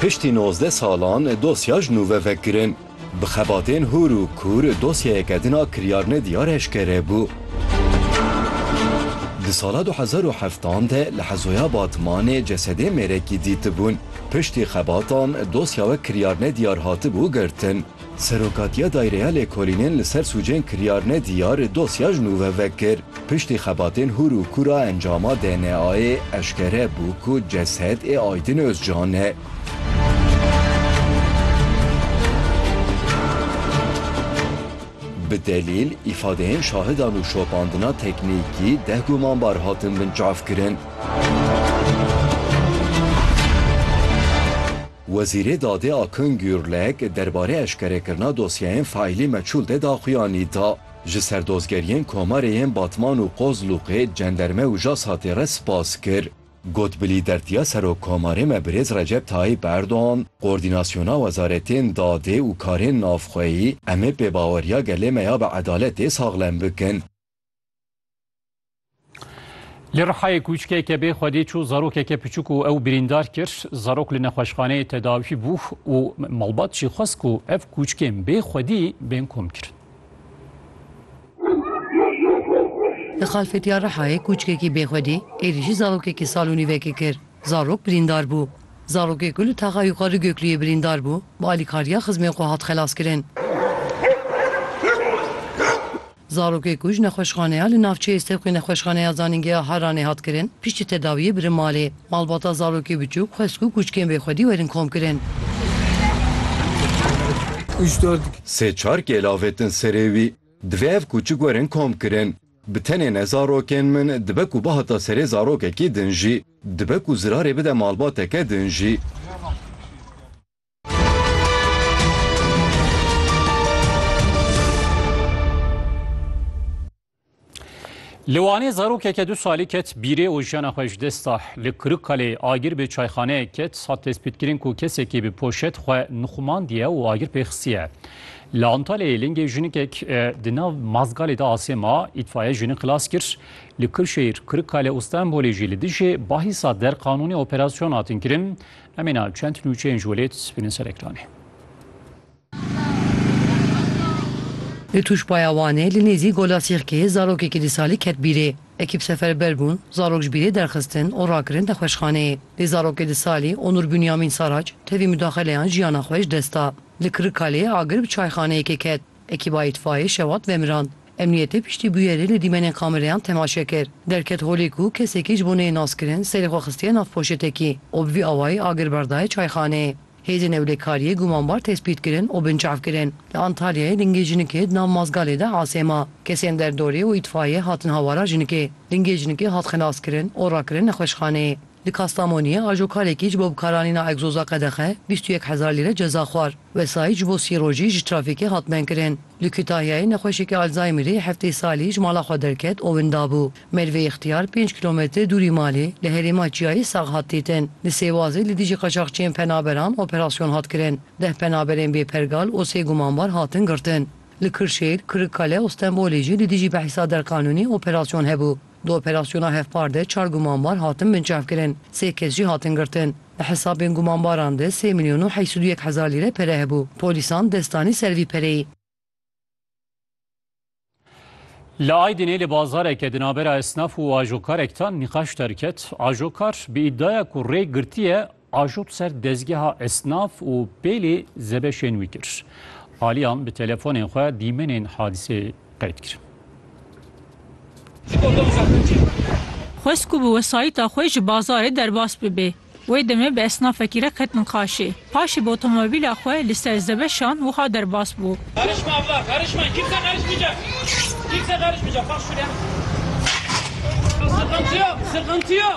Piştî nozdeh salan dosya ji nû ve vekirin. Bi xebatên hûr û kûr dosyayeke din a kiryarnediyar eşkere bû. Di sala du hezar û heftan de li Hezoya Batmanê cesedên mêrekî dîtibûn. Piştî xebatan dosya we kiryarnediyar hatibû girtin. Serokatiya Dayreya Lêkolînên li ser sûcên kiryarine diyar dosya ji nû ve vekir. Piştî xebatên hûr û kûr a encama DNA'yê eşkere bû ku ceset ê Aydin Ozcan e. Bi delîl, îfadeyên şahidan û şopandina teknîkî deh gumanbar hatin binçavkirin. Wezîrê Dadê Akın Gürlek derbarê eşkerekirina dosyeyên faîlî meçûl de daxuyanî da. Ji serdozgeriyên komarê yên Batman û Qozluqê, cenderme û JASAT'ê re spas kir. Got bi lîdertiya Serokkomarê me Birêz Recep Tayîp Erdogan, Koordînasyona Wezaretên Dadê û Karên Navxweyî, em ê pêbaweriya gelê me ya bi edaletê saxlem bikin. Li Rihayê kûçkeke bê xwedî çû zarokeke piçûk û ew birîndar kir. Zarok li nexweşxaneyê tedawî bû û malbat jî xwest ku ev kûçkên bê xwedî bên komkirin. Li Xalfetiya Rihayê kûçkekî bê xwedî êrîşî zarokekî sal û nîvekê kir. Zarok birîndar bû. Zarokê ku li Taxa Yuxar li Gökluyê birîndar bû, bi alîkariya xizmên xwe hat xelaskirin. Zarokê ku ji nexweşxaneya li navçeyê Sewqê Nexweşxaneya Zanîngeha Harranê hat kirin, piştî tedawiyê birin malê. Malbata zarokê biçûk xwest ku kûçikên bêxwedî werin komkirin. Sê çar kêl avêtin serê wî. Divê ev kûçik werin komkirin. Bi tenê ne zarokên min, dibe ku bihata serê zarokekî din jî. Dibe ku zirarê bide malbateke din jî. Li Wanê zarokeke du salî ket bîrê û jiyana xwe ji dest da. Li Kirikkalê agir bi çayxaneyek ket hat destpêtkirin ku kesekî bi poşet xwe nixumandiye û agir pê xistiye. Li Antalyayê lingê jinikek e, di nav mazgalê de asê ma, îtfaiye jini xilas kir. Li Kirşehîr, Kirikkale û Stenbolê jî li dijî bahîsa derqanûnê operasyon hatin kirin. Em înan çend nûçeyên ji welêt spînin ser ekranê. Li Tûşbaya Wanê li nêzî Gola Sîrkê zarokekî du salî ket bîrê. Ekîp seferber bûn, zarok ji bîrê derxistin û rakirin nexweşxaneyê. Lê zarokê du salî Onur Bûnyamîn Saraç tevî mudaxeleyan jiyana xwe ji dest da. Li Kirikkalê agir bi çayxaneyekê ket. Ekîba îtfaîyê şewat vemirand. Emniyetê piştî bûyerê li dîmenên kamereyan temaşe kir. Derket holê ku kesekî ji bo neyê naskirin serê xwe xistiye nav poşetekî û bi vî awayî agir berdaye çayxaneyê. Hêzên ewlekariyê gumanbar tespît kirin û binçav kirin. Li Antalyayê lingê jinikê di nav mazgalê de asê ma. Kesên derdorê û îtfaîyê hatin hawara jinikê. Lingê jinikê hat xelaskirin û rakirin nexweşxaneyê. Li Kastamoniyê ajokarekî ji bo bikaranîna egzoza qedexe bîst û yek hezar lîre ceza xwar. Wesayît ji bo sî rojî ji trafîkê hat menkirin. Li Kutahyayê nexweşekî Alzaymerî heftê salî ji mala xwe derket û winda bû. Merve Îxtiyar pênc kîlometre dûrî malê li herêma Çiyayê sax hat dîtin. Li Sêwazê li dijî qaçaxçiyên penaberan operasyon hat kirin. Deh penaberên bêpergal û sê gumanbar hatin girtin. Li Kirşêl, Kirikkale û Stenbolê jî li dijî behsa derqanûnî operasyon hebû. Di operasyona hevpar de çar gumanbar hatin binçavkirin, sê kes jî hatin girtin. Di hesabên gumanbaran de sê milyon û heşt û du yek hezar lîre pere hebû. Polîsan dest danî ser vî pereyê. Li Aydinê li bazareke di navbera esnaf û ajokarekdan nîqaş derket. Ajokar bi îddiaya ku rê girtiye Ajot ser dezgeha esnaf û pêlê zebeşên wî kir. Aliyan bi telefonên xwe dîmenên hadiseyê qeyd kir. Xwest ku bi wesayîta xwe ji bazarê derbas bibe. Wê demê bi esnafekî re ketin qaşê. Paşê bi otomobîla xwe li ser zebeşan wiha derbas bû.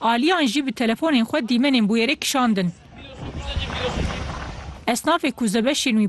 Aliyan jî bi telefonên xwe dîmenên bûyerê kişandin. Esnafê ku zebeşên wî